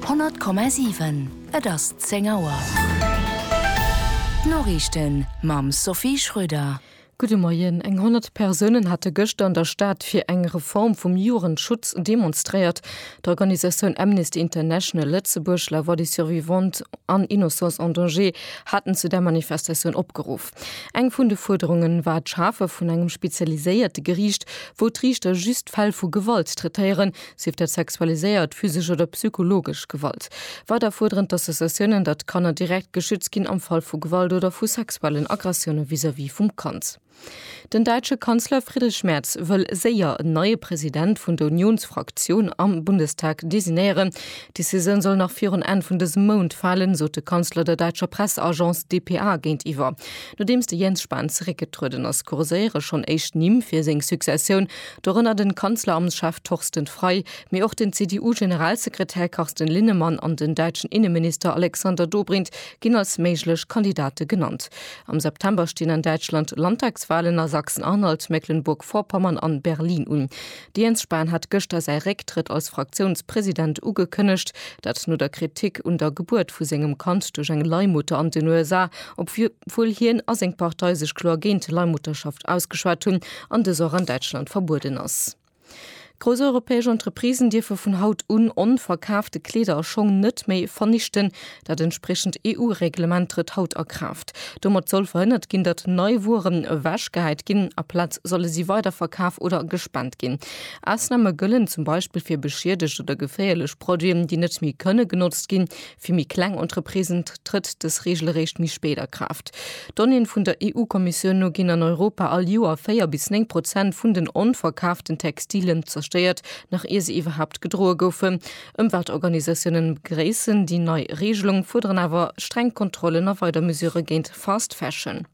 100,7 Et ass 10 Auer. D'Noriichten mam Sophie Schröder. Gudde Moien. Eng 100 Persounen hate gëschter an der Stad fir eng Reform vum Jugendschutz demonstréiert. D'Organisatioun Amnesty International Lëtzebuerg, La Voix des Survivantes an Innocence en Danger haten zu där Manifestatioun opgeruff. Eng vun de Fuerderunge war d'Schafe vun engem spezialiséierte Geriicht, wou d'Riichter just Fäll vu Gewalt traitéieren, Sief dat sexualiséiert, physesch oder psychologesch Gewalt. Weider fuerderen d'Associatiounen, datt Kanner direkt geschützt ginn am Fall vu Gewalt oder vu sexuellen Aggressioune vis-à-vis vum Kand. Den däitsche Kanzler Friedrich Merz wëll séier en neie President vun der Uniounsfraktioun am Bundestag designéieren. D'Decisioun soll nach virun Enn vun dësem Mount falen, sot de Kanzler der däitscher Presseagence dpa géintiwwer. Nodeems de Jens Spahn zeréckgetrueden ass, kurséiere schonn éischt Nimm fir seng Successioun. Dorënner den Kanzleramtschef Torsten Frei, mee och den CDU-Generalsekretär Carsten Linnemann an den däitschen Inneminister Alexander Dobrindt ginn als méiglech Kandidate genannt. Am September stinn an Däitschland Landtagswahlen a Sachsen-Anhalt, Mecklenburg-Vorpommern an Berlin un. De Jens Spahn hat gëschter säi Récktrëtt als Fraktiounspresident ugekënnegt, dat no der Kritik un der Gebuert vu sengem Kand duerch eng Leihmutter an den USA, obwuel hien a seng Partei sech kloer géint Leihmutterschaft ausgeschwat hunn. an dës och an Däitschland verbueden ass. Grouss europäesch Entreprisen dierfe vun haut un onverkaafte Kleeder a Schong net méi vernichten. Dat entspriechend EU-Reglement trëtt haut a Kraaft. Domat soll verhënnert ginn, datt nei Wueren ewechgehäit ginn. Aplaz solle si weiderverkaf oder gespent ginn. Ausname gëllen zum Beispill fir beschiedegt oder geféierlech Produiten, déi net méi kënne genotzt ginn, Fir méi kleng Entreprisen trëtt dës Reegel eréischt méi spéit a Kraaft. Donnéeën vun der EU-Kommissioun no ginn an Europa all Joer 4 bis 9 Prozent vun den onverkaaften Textilien zerstéiert, nach ier se iwwerhaapt gedroe goufen. Ëmweltorganisatiounen begréissen déi nei Reegelung, fuerderen awer streng Kontrollen a weider Mesure géint Fast Fashion.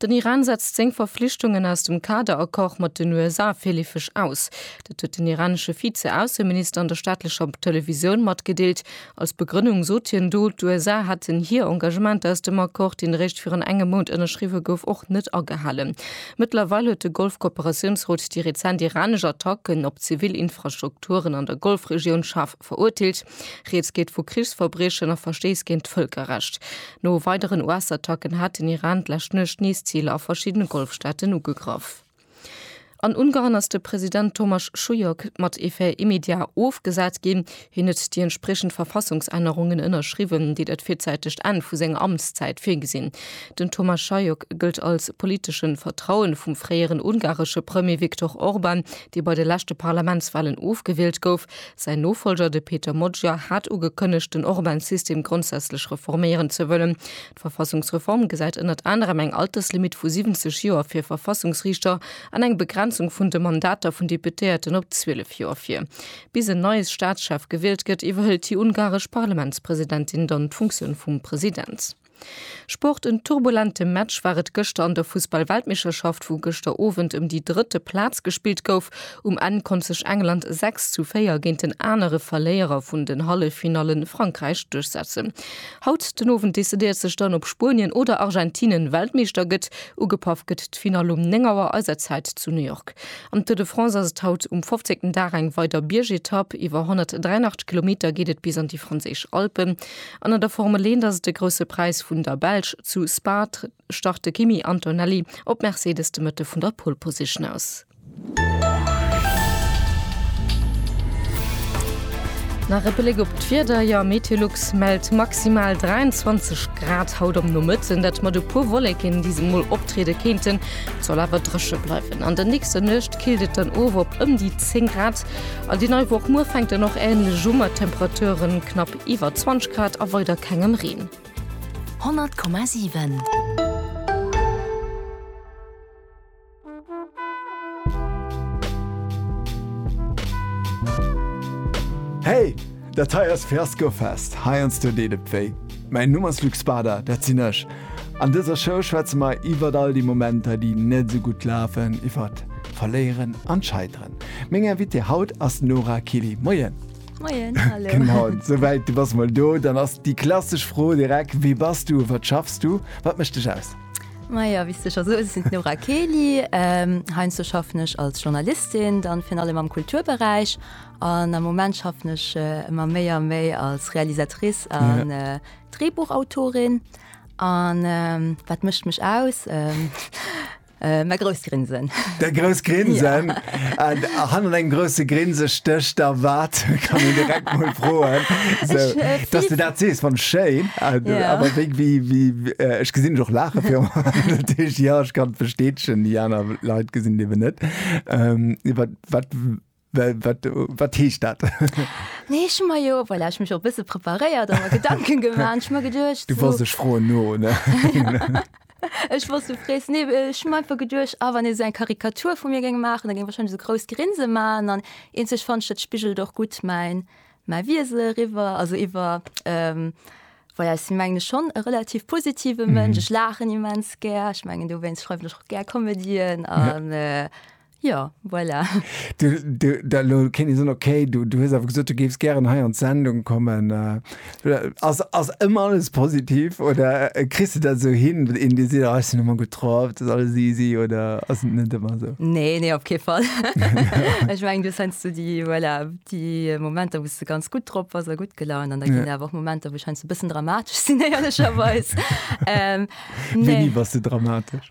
Den Iran setzt seng Verflichtungen aus dem Kader-Accord mat den USA virleefeg aus. Dat huet den iranesche Vize-Ausseminister an der staatlecher Televisioun matgedeelt. Als Begrënnung sot hien do, d'USA hätten hir Engagementer aus dem Accord, deen eréischt virun engem Mount ënnerschriwwe gouf, och net agehalen. Mëttlerweil huet de Golf-Kooperatiounsrot déi rezent iranesch Attacken op zivil Infrastrukturen an der Golfregioun schaarf verurteelt. Rieds geet vu Krichsverbriechen a Verstéiss géint d'Vëlkerrecht. No weideren US-Attacken hat den Iran d'lescht Nuecht nees Ziler a verschiddene Golfstaaten ugegraff. An Ungarn ass de President Thomas Schulyok mat effet immédiat ofgesat ginn. Hien huet déi entspriechend Verfassungsännerungen ënnerschriwwen, déi dat virzeitegt Enn vu senger Amtszäit virgesinn. Den Thomas Schulyok gëllt als politesche Vertraue vum fréieren ungaresche Premier Viktor Orban, dee bei de leschte Parlamentswalen ofgewielt gouf. Säin Nofolger, de Peter Moggia, hat ugekënnegt, den Orban-System grondsätzlech reforméieren ze wëllen. D'Verfassungsreform gesäit ënnert anerem eng Alterslimitt vu 70 Joer fir Verfassungsriichter an eng Begrenzung vun de Mandater vun Deputéierten op 12 Joer vir. Bis en neie Staatschef gewielt gëtt, iwwerhëlt déi ungaresch Parlamentspresidentin dann d'Funktioun vum President. Sport, En turbulente Match war et gëschter an der Fussball-Weltmeeschterschaft, wou gëschter Owend ëm déi drëtte Plaz gespillt gouf. Um Enn konnt sech England 6 zu 4 géint den anere Verléierer vun den Halleffinalle Frankräich duerchsetzen. Haut den Owend decidéiert sech dann, ob Spuenien oder Argentine Weltmeeschter gëtt. Ugepaff gëtt d'Finall um 9 Auer eiser Zäit zu New York. Am Tour de France ass et haut um fofzéngten Dag eng weider Biergetapp. Iwwer 183 Kilometer geet et bis an déi franséisch Alpen. An an der Formel 1 ass et de Grousse Präis vun der Belsch. Zu Spa start de Kimi Antonelli op Mercedes de Mëtte vun der Pole Position aus. Nach e Bléck op d'Wieder, jo Meteolux mellt maximal 23 Grad haut am Nomëtten, dat mat e puer Wolleken, déi se mol optriede kéinten. Et soll awer dréche bleiwen. An der nächster Nuecht killt et dann of op ëm déi 10 Grad. An déi nei Woch muer fänkt dann och änlech u mat Temperaturen knapp Iwwer 20 Grad a weider kengem Reen. 100,7. Hey! Dat hei ass Fiaskofest, heiansdo deet et wéi. Mäin Numm ass Luc Spada, dat sinn ech. An dëser Show schwätze mer iwwert all déi Momenter, déi net esou gutt lafen, iwwert d'Verléieren an d'Scheiteren. Meng Invitée haut ass d'Nora Killy. Moien! Moien, hallo. Genau, sou wäit du bass mol do. Dann ass déi klassesch Fro direkt, Wie bass du? Wat schaffs du? Wat mécht dech aus? Maja, wéi s de scho soos, ech sinn d'Nora Kely. Ähm, heiansdo schaffen ech als Journalistin, dann virun allem am Kulturberäich. An am Moment schaffen ech äh, ëmmer méi a méi als Realisatrice an äh, Drehbuchautorin. An ähm, wat mécht mech aus? Ähm, Äh, mä grousst Grinsen. Der grouss Grinsen. Ja. An hanner engem grouse Grinse stécht da wat? Kann een direkt mol froen. So, ich, äh, dass du dat sees wann schéin. Äh, ja. Aber wéi, wéi, wéi äh, ech gesinn och lache fir ja ech kann versteetchen, die aner Leiit gesinn dewe net. Ähm, wat, wat Wat heescht dat? Nee ech hu mer jo well ech mech op bësse preparéiert a Gedanken geman ech mer geduercht. Du wars ech froen no. Ech wars du frees ne ech mein ver geduerch a wann ee se eng Karikatur vu mir géng maachen, da géng wahrscheinlech se grouss Grinse man an een sech fanch dat spigelt och gutt mäin mäi Wisel eriwwer also iwwer. Ähm, Well ech sinn meng ech schonn e relativ positive Mënsch. Ech lachen immens gär. Ech mengen dowéinst schreiwen ech och gär Comedien an. Jo, voilà. Du, du, da lo kéint ee soen, okay, du, du hues awer gesot, du géifs gären hei an d'Sendung kommen. Äh, ass, ass ëmmer alles positiv oder äh, kriss du dat esou hin, een Dir seet, ah, ech sinn ëmmer gutt drauf, dat ass alles easy oder ass et net ëmmer esou? Nee, nee, op kee Fall. Ech meng, du scheinst du déi, voilà, déi Momenter, wou du ganz gutt drop ass a gutt gelaunt an da ginn awer och Momenter, wou scheinst du e bëssen dramatesch sinn, éierlecherweis. Ähm, Wéini nee. bass du dramatesch?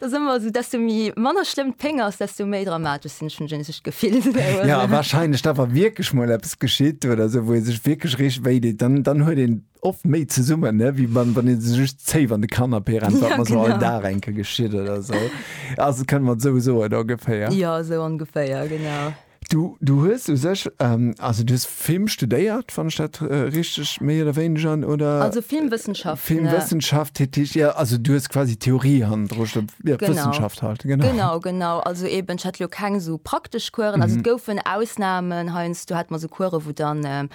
Dat ass ëmmer esou, desto méi manner schlëmm d'Péng ass, desto méi dramatesch sinn. Ech hunn just dat Gefill. Jo, a warscheinlech da wa wierklech mol eppes geschitt oder esou, wou ee sech wierklech richteg wéi deet, dann dann huet een oft méi zesummen, ne, wéi wann wann ee sech just zéif an de Kanapee rennt, wat mer esou all Dag enke geschitt oder esou. Also kënne mer et esou soen ongeféier. Jo, esou ongeféier, genau. Du, du hues u sech, also du hues Film studéiert, wann ech dat richteg méi oder wéineger, oder? Also Filmwëssenschaften. Filmwëssenschaft, heet déi, ja, also du hues quasi Theorie hannendru sto, jo, Wëssenschaft halt, genau. Genau, genau, also eben, ech hat elo keng esou praktesch Coursen, also et goufen Ausnahmen, heiansdo hat mer esou Coursen, wou dann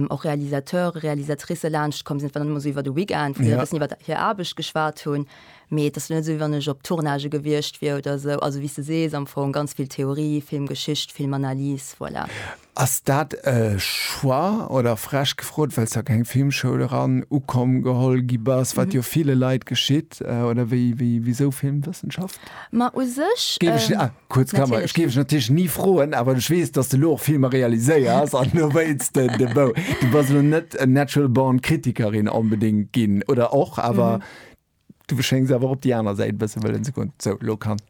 och Realisateure, Realisatricë laanschtkomm sinn, wat dann ëmmer esou iwwer de Weekend, wou se e bëssen iwwer hir Aarbecht geschwat hunn. Mee et ass jo net esou, wéi wann ech op Tournagë gewiescht wier oder esou. Also, wéi s de sees, am Fong ganz vill Theorie, Filmgeschicht, Filmanalys, voilà. Ass dat e Choix oder, frech gefrot, well s de a keng Filmschoul eran ukomm, geholl gi bass, wat jo ville Leit geschitt? Oder wéi, wisou Filmwëssenschaft? Ma u sech, natierlech. Géif ech, ah, kuerz Klammer, ech géif ech natierlech ni froen, awer ech weess, dass s de elo och Filmer realiséiers an do wéilts de de Bou. Du bass elo net natural born Kritikerin onbedéngt ginn, oder och? Awer Du schéngs awer op déi aner Säit e bësse wëllen ze goen. Sou, lo kann.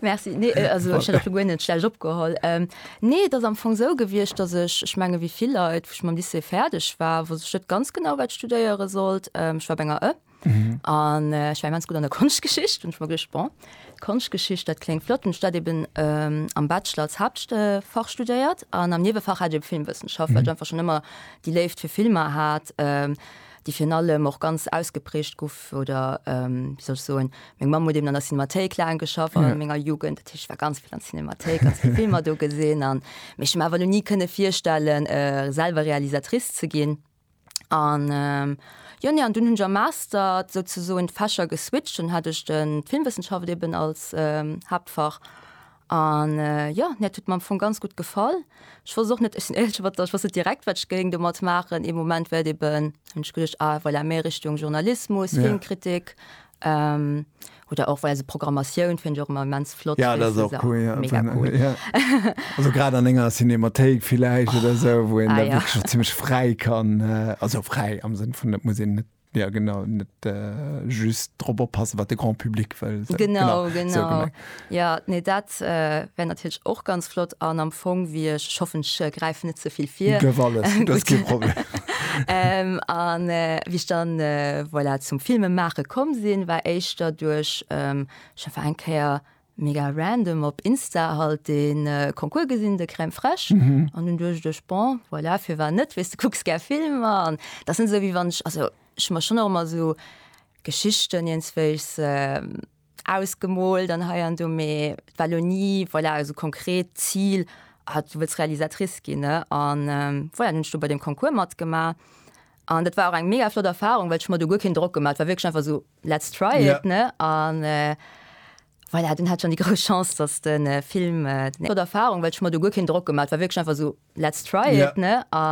Merci. Nee, äh, also ech hätt och lo guer net schlecht opgeholl. Ähm, nee, dat ass am Fong sou gewiescht, dass ech, ech menge wéi vill Leit, wou ech mam Lycée fäerdeg war, wosst ech net ganz genau, wat ech studéiere sollt. Ähm, ech war op enger ë, Mhm. An äh, ich war ganz gut an der Konschgeschicht und ich war gedacht, bon, Konschgeschicht dat klingt flott und dat eben ähm, am Bachelor als Hauptfach studiert an am Nebefach hat eben Filmwissenschaft, mhm. weil ich einfach schon immer die Lebt für Filme hat. Ähm, déi virun allem och ganz ausgeprägt guff oder ähm, wie soll ich soen, meng Mamm huet eben an der Cinemathéik laang geschafft an ja. menger Jugend, dat ich war ganz viel an Cinemathéik, ganz viel Filmer do gesinn an mech ma awer nie kënne virstellen äh, selber Realisatrice ze ginn an ähm, Jo ne an dun hunn am Master souzesoen d'Fächer geswitcht, dann hat ech den d'Filmwëssenschaft eben als ähm, Haaptfach An jo, mir hat huet mer am Fong ganz gutt gefall. Ech wosst och net, ech sinn éierlech, ech wosst net direkt, wat ech géing domat maachen. Ee Moment war et eben, hunn ech geduecht, ah voilà, méi Richtung Journalismus, Filmkritik oder och voilà, esou Programmatioun fannen ech och ëmmer immens flott. Jo, dat ass och cool, mega cool. Also grad an enger Cinémathéik villäicht oder esou, wou een da wierklech och zimmlech fräi kann, also fräi am Sënn vun et muss een net. Ja genau, net just drop oppassen, wat de Grand Public wëll. Genau, genau. Ja, nee, dat wär natierlech och ganz flott an am Fong wéi ech, ech hoffen, ech gräifen net ze vill vir. Dierf alles, dat ass kee Problem. An wéi ech dann, voilà, zum Filme maache komm sinn, war éischter duerch, ech hu war eng Kéier, Mega random op Insta halt den Concours gesinn de Crème fraiche mhm. an hun duerch dech bon voilà fir war net wis du kucks ger Filmer an dat sind so wie wann ich also ich mach schon immer so Geschichten jens wéis äh, ausgemol dann heier du me Wallonie voilà also konkret Ziel hat du wils Realisatrice gin an ähm, voilà, hun du bei dem Concours matgemacht An dat war och eng mega flott Erfahrung, well ech mer do guer keen Drock gemaat, war wierklech einfach sou let's try it ne an voilà, dunn hat ech dann déi grouss Chance dass den Film, flott Erfahrung, well ech mer do guer keen Drock gemaat, war wierklech einfach sou let's try it ne an.